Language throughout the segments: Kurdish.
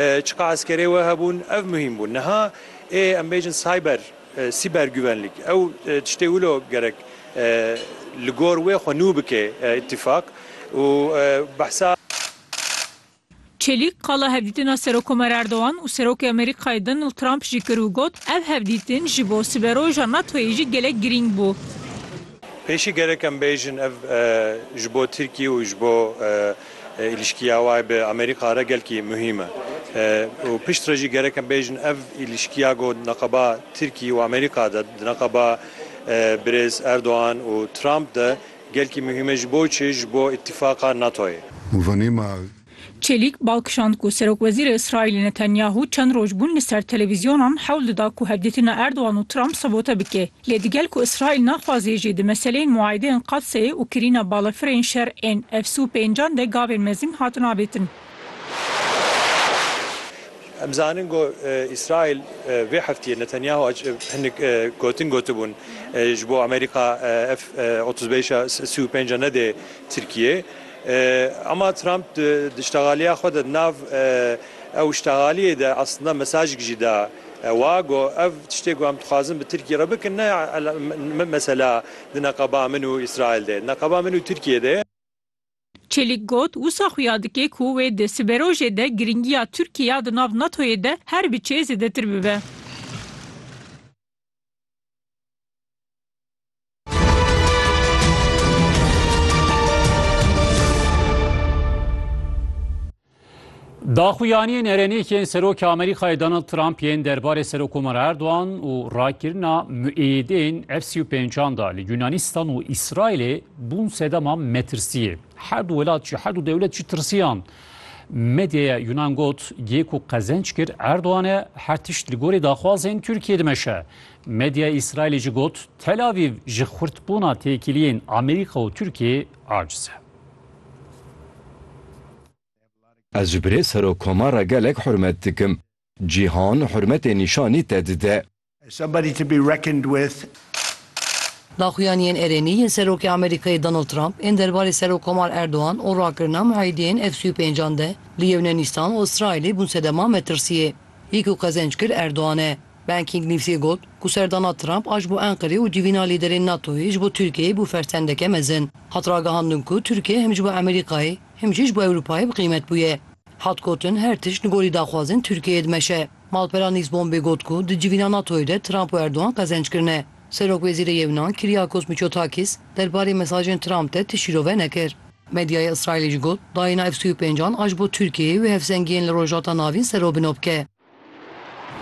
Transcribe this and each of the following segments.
Çiqa eskerê we hebûn ev muhîm bû. Niha ê em bêjin cyber, sîbergüvenlik, ew tiştê wilo gerek li gor wê xwe nû bike îtîfaq û behsa. Çelîk qala hevdîtina Serokomer Erdogan û Serokê Amerîkayê Donald Trump jî kir û got, Ev hevdîtin ji bo siberoja NATO'yê jî gelek girîng bû. Pêşî gerek em bêjin ev ji bo Tirkiyê û ji bo Îlişkiya wê bi Amerîka re gelkî muhîm e û piştre jî gerek em bêjin ev îlişkiya ku di neqeba Tirkî û Amerîka de, di neqeba Birêz Erdogan û Trump de gelkî muhîm e ji bo çi? Ji bo îtîfaqa NATO'yê. Çelîk bal kişand ku Serokwezîrê Îsraîlê Netanyahu çend roj bûn li ser televîzyonan hewl dida ku hevdîtina Erdogan û Trump sabote bike. Lê digel ku Îsraîl naxwazê jî di meseleyên muayedeyên Qadseyê û kirîna balafirên şer ên efs û pêncan de gavên mezin hatin avêtin. Em dizanin ku Îsraîl vê heftiyê Netanyahu hinek gotin gotibûn ji bo Amerîka F otuz beş a sî û pênc a nede Tirkiyeyê. Ama Trump di îştexaliya xwe de di nav ew îştexaliyê de aslinde mesajek jî da. Ewa got, Ev tiştê ku em dixwazin bi Tirkiyê re bikin ne mesela di neqeba min û Îsraîl de, di neqeba min û Tirkiyê de. Çelîk got, Wisa xuya dike ku wê di siberojê de girîngiya Tirkiyê ya di nav NATO'yê de her biçe zêdetir bibe. Daxuyaniyên erenêkên Serokê Amerîkayê Donald Trump yên derbarê Serokomara Erdogan û rakirina muêdên F sî û pêncan da li Yûnanîstan û Îsraîlê bûn sedema metirsiyê. Her du welat jî her du dewlet jî tirsiyan. Medyaya Yûnan got, Gêko qezenc kir Erdogan e her tişt li gorî daxwazên Tirkiyê dimeşe. Medya Îsraîlê jî got, Tel Avîv ji xurtbûna têkiliyên Amerîka û Tirkiyeyê aciz e. Ez ji birê Serokoma re gelek hurmet dikim. Cîhan hurmetê nîşanî te dide. Daxuyaniyên erênî yên Serokê Amerîkayê Donald Trump ên derbarê Serok Komar Erdogan û rakirina muhîdiyên FCU-pêncan de li Yewnenîstan û Îsraîlê bûn sedema metirsiyê. Yek û qezenc kir Erdogan e. Banking News'ê got ku serdana Trump a ji bo Enqerê û civîna lîderên NATO'yê ji bo Tirkiyeyê bû fersendeke mezin. Hat ragihandin ku Tirkiye him ji bo Amerîkayê him jî ji bo Ewropayê bi qîmet bûye. Hat gotin her tişt li gorî daxwazên Tirkiyeyê dimeşe. Malpera Newsbombê got ku di civîna NATO'yê de Trump û Erdogan qezenc kirine. Serokwezîrê Yewnan Kyriakos Mitsotakis derbarê mesajên Trump de ti şîrove nekir. Medyaya Îsraîlê jî got dayîna F-sû û pênc an a ji bo Tirkiyeyê wê hevsengiyên li Rojhilata Navîn serobino bike.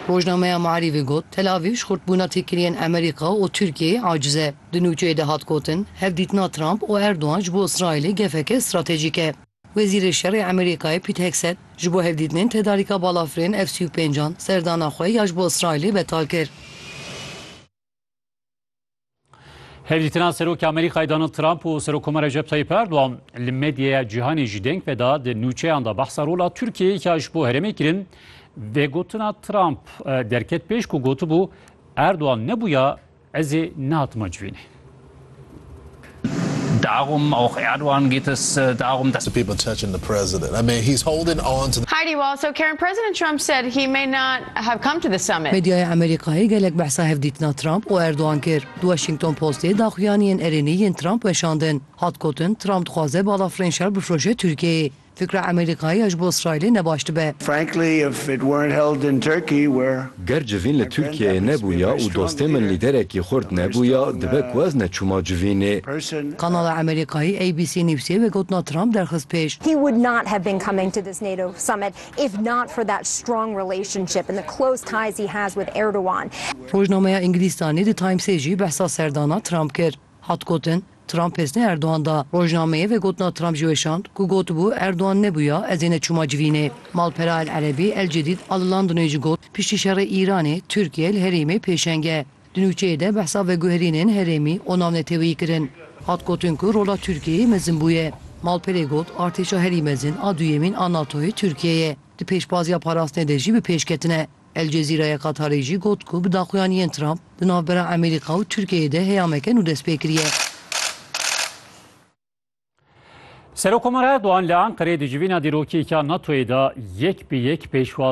Rojnameya Maarîfê got, Tel Avîv ji xurtbûna têkiliyên Amerîka û Tirkiyeyê aciz e. Di nûçeyê de hat gotin, Hevdîtina Trump û Erdogan ji bo Îsraîlê gefeke stratejîk e. Wezîrê Şerê Amerîkayê Pît Hegset ji bo hevdîtinên tedarîka balafirên F-sî û pênc an serdana xwe ya ji bo Îsraîlê betal kir. Hevdîtina Serokê Amerîkayê Donald Trump û Serokkoma Recep Tayyip Erdogan li medyaya cîhanê jî deng ve da di nûçeyan da behsa rola Tirkiyeyê ka ji bo herêmê kirin vê gotina Trump derket pêş ku gotibû Erdogan nebûya ezê nehatima civînê. Darum auch Erdogan geht es darum, dass. To people touching the president. I mean, he's holding on to the. Heidi Wall, So Karen, President Trump said he may not have come to the summit. Medyaya Amerîkayê gelek behsa hevdîtina Trump û Erdogan kir. Di Washington Postê daxuyaniyên erênî yên Trump weşandin. Hat gotin, Trump dixwaze balafirên şer bifroşe Tirkiyeyê. Fikra Amerîkayê ya ji bo Îsraîlê ne baş dibe. Frankly, if it weren't held in Turkey, where Ger civîn li Tirkiyeyê nebûya û dostê min lîderekî xurt nebûya, dibe ku ez neçûma civînê. person Kanala Amerîkayî ABC Newsê vê gotina Trump derxist pêş. He would not have been coming to this NATO summit if not for that strong relationship and the close ties he has with Erdogan. Rojnameya Ingilistanê The Timesê jî behsa serdana Trump kir. Hat gotin, Trump hêsnê Erdogan da. Rojnameyê vegotina Trump jî weşand ku gotibû Erdogan nebûya ez ê neçûma civînê. Malpera El Erebî El Cedîd Alilandinê jî got, Piştî şerê Îranê, Tirkiye li herêmê pêşeng e. Di nûçeyê de behsa veguherînên herêmî û navneteweyî kirin. Hat gotin ku rola Tirkiyeyê mezin bûye. Malperê got, Artêşa herî mezin a duyemîn a NATOyê Tirkiye ye. Di pêşbaziya parastinê de jî bi pêş ketine. El Cezîra yê Qatarê jî got ku bi daxuyaniyên Trump di navbera Amerîka û Tirkiyeyê de heyameke nû dest pê kiriye. Serokkomar Erdogan li Enqereyê di civîna dîrokî ya NATO'yê de yek bi yek pêşwazî